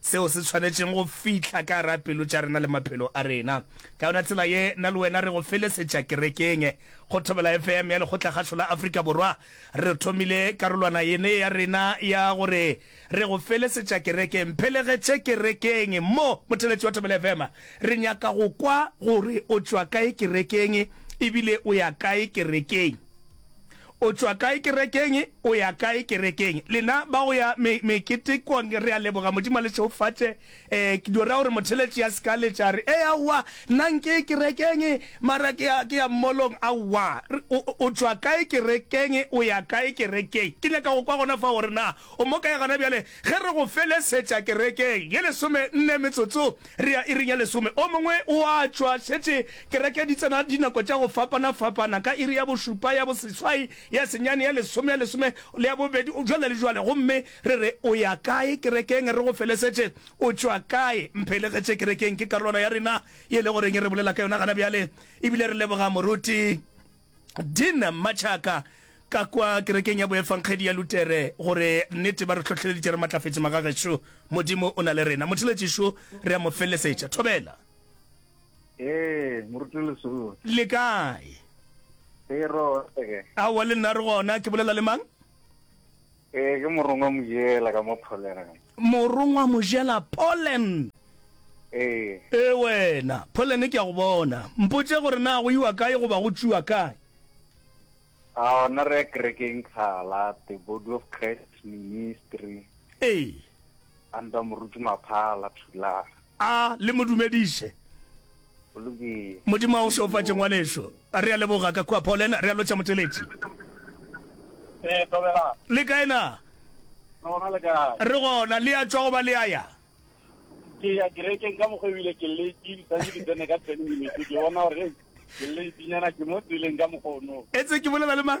Seo se swanetšeng go fihla ka gara pelo tša rena le maphelo a rena. Ka yona tsela ye, na le wena re go felesetša kerekeng. Go Thobela FM ya Lekgotlakgašo la Afrika Borwa, re thomile karolwana yene ya rena ya go re re go felesetša kerekeng. Mphelegetše kerekeng mo, motheletši wa Thobela FM. Re nyaka go kwa gore o tšwa kae kerekeng ebile o ya kae kerekeng. O tšwa kae kerekeng? O ya kae kerekeng? Lena ba go ya me, meketekong, re a leboga Modimo a le šegofatše. E, ke dio ra gore motheletši a se ka letša a re, Ee, aowa, nna nke ye kerekeng, mara ke ya, ke ya mmolong. Aowa. O, o tšwa kae kerekeng? O ya kae kerekeng? Ke nyaka go kwa gona fa gore na o mo kae gona bjale. Ge re go felesetša kerekeng ye lesome nne metsotso re ya iring ya lesome, o mongwe o a tšwa, šetše kereke di tsena dinako tša go fapana-fapana, ka iri ya bošupa, ya boseswai, ya senyane, ya lesome, ya lesome le ya bobedi, bjalo le bjalo. Gomme re re, O ya kae kerekeng? Re go felesetše. O tšwa kae? Mphelegetše kerekeng. Ke karolwana ya rena ye e lego reng e re bolela ka yona gona bjale. Ebile re leboga moruti. Dean Mmatšhaka ka kwa kerekeng ya boefangedi ya Lutere gore nnete ba re hlohleleditše re matlafetše magagešo Modimo o na le rena motheletši šo re a mo felesetša thobela. Ee, moruti Lesolo. Le kae? Ee, ro. Aowa, le nna re gona. Ke bolela le mang? Ee, ke Morongwa Mojela ka mo Poland. Morongwa Mojela, Poland! Ee. Ee, wena. Poland ke a go bona. Mpotše gore na go iwa kae goba go tšwiwa kae? Ao, na re ya kerekeng Kgala, The Body of Christ Ministry. Ee. Under Moruti Maphala, Thulare. A le mo dumediše. Go lokile. Modimo a go šeofatše, ngwanešu. Re a leboga ka kua Poland. Re a lotšha, Motheletši. Ee, Thobela. Le kae na? Re gona, le kae? Re gona. Le a tšwa goba le a ya? Ke ya kerekeng ka mokgwa ebile ke late, santse ke tsene ka ten minutes. Ke bona gore, hei, ke late-nyana, ke mo tseleng ka mokgwa ono. Etse ke bolela le mang?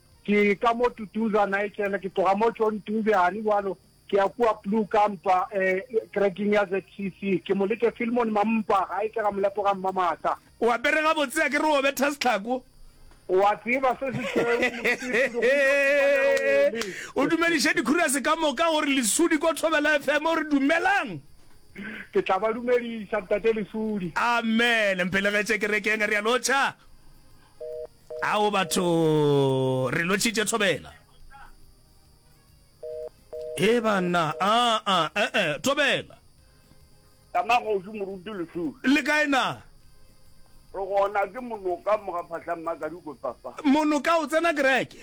Ke ka mo Tutuza, Nigel, ke tloga mo John Dube, gane bjalo ke ya kua Blue Kampa, eh, kerekeng ya ZCC. Ke mo leke Filmon Mampa, gae ke Ramolepo ga Mmamata. O apere gabotse, a ke re o betha setlhako. O a tseba se sešweu, Lesudi, go ntšo šupa lerole. O dumediše dikhurase ka moka, o re, Lesudi ko Thobela FM, o re, Dumelang! Ke tla ba dumediša, Ntate Lesudi. Amen! Mphelegetše kerekeng, a realo Cha. Ao batho re lotšhitše thobela. E banna a a e e thobela. Ka magošu moruti lesu. Le kae na? Re gona ke monoka mo ga phahlang makadi ko papa. Monoka o tsena kereke.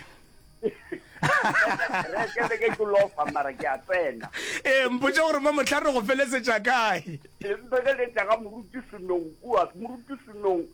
Kereke le ke ke lofa mara ke a tsena. E mpotše gore mo mohla re go felesetša kae. E mpeleletša ga moruti senong kua moruti senong.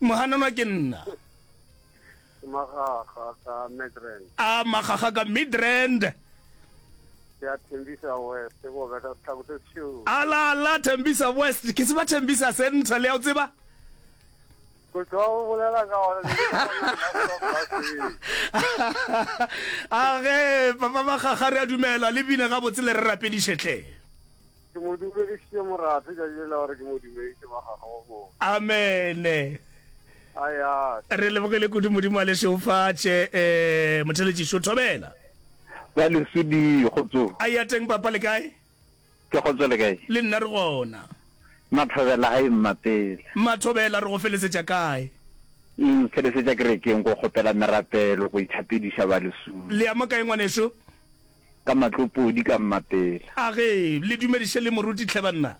Mohananwa ke nna. Magaga ka Midrand. A magaga ka Midrand. Ke a Thembisa West go beta setlhako se sešoro. Ala ala Thembisa West ke tseba Thembisa Central ya o tseba? Go tšwa o bolela ka gore a ge papa magaga re a dumela le bine gabotse le re rapedišetlhe Ke mo dumedišitše morafe tšatši lela gore ke mo dumediše ba gagwe go mo. Amene. A ya. Re lebogele kudu Modimo a le šeufatše. Ee, Motheletši šo thobela. Ba lesodi kgotso. A ya teng papa le kae? Ke kgotso le kae? Le nna re gona. Mathobela a immapele. Mathobela re go felesetša kae? Felesetša kerekeng ko kgopela merapelo go ithapediša ba lesodi. Le ya mo kae ngwaneso? Ka matlopodi ka mmapela. A ge le dumediše le moruti tlhe banna.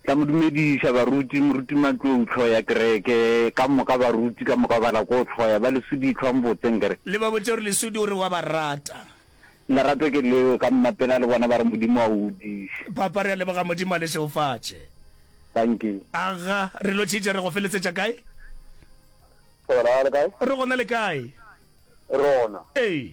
Tla mo dumediša baruti. Moruti Matlou tlhoo ya kereke. Ka moka baruti ka moka ba la koo tlhoo ya ba lesudi tlhwa mbotseng ke re. Le ba botše gore lesudi o re wa ba rata. Lerato ke leo ka mmapela le bona ba re Modimo a o godiše. Papa re a leboga Modimo a le šeofatše. Thank you. Aga re lo tšhitša re go feletsetša kae? Re gona le kae? Re gona le kae? Rona. Ee.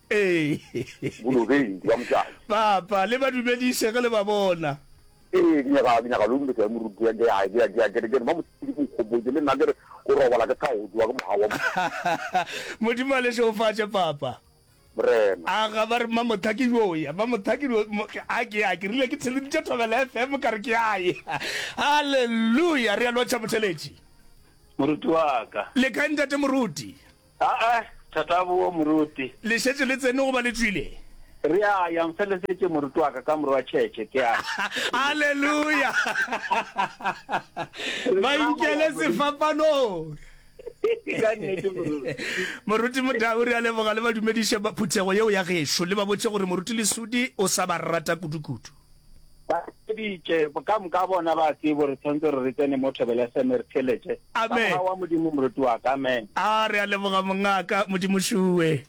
Ee. Bolobeng, ke ba motšadi. Papa, le ba dumediše ge le ba bona. Ee, ke nyaka, ke nyaka lo dumediša ge moruti ya, ke a, ke a, ke a, ke re, ke re, ba Mosidi ke nkgopotše, le nna ke re, o robala ke thago tšowa ke moga wa Motho. Modimo a le šegofatše, Papa. Morena. A ga ba re mma Motha ke yo ya, mma Motha ke yo, mo, a ke ya, ke rile ke theleditše Thobela FM ka re ke a ye. Haleluya! Re a lotšha, Motheletši. Moruti wa ka. Le kae Ntate Moruti? Aa, Tatabu wo moruti. Le šetše le tsene goba le tšwile? Re a ya, nfelesetše moruti wa ka ka morwa tšhetše, ke a. Haleluya! Ba inkele sefapanong. Ka nnete, moruti. Moruti Motau, re a leboga, le ba dumediše ba phuthego yeo ya gešo, le ba botše gore Moruti Lesudi o sa ba rata kudukudu. ba tšeditše ka moka bona ba tsebo gore tshwanetse re re tsene mo thobela seme re theletše ka wa modimo moruti wa ka amen a re a leboga mongaka modimo šuwe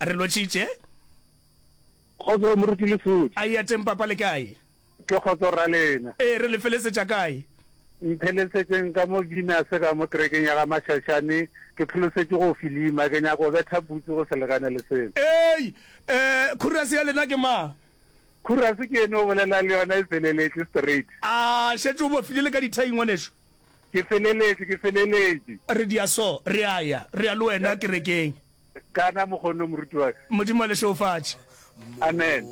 a re lotšitše kgotso moruti le fodi a ya teng papa le kae ke kgotso ra lena ee re le felesetša kae mphelesetšeng ka mo gina se ka mo kerekeng ya ga mašašane ke pholosetše go filima ke nyako betha butse go selekane le seno ee um khurase ya lena ke mang Khurase ke yene o bolelang le yona e feleletše straight. A šetše o bofile le ka dithai ngwanešu? Ke feleletše, ke feleletše. Re dia so, re a ya, re ya le wena kerekeng. Kana mokgone moruti wa ka. Modimo a le šeofatše. Amen.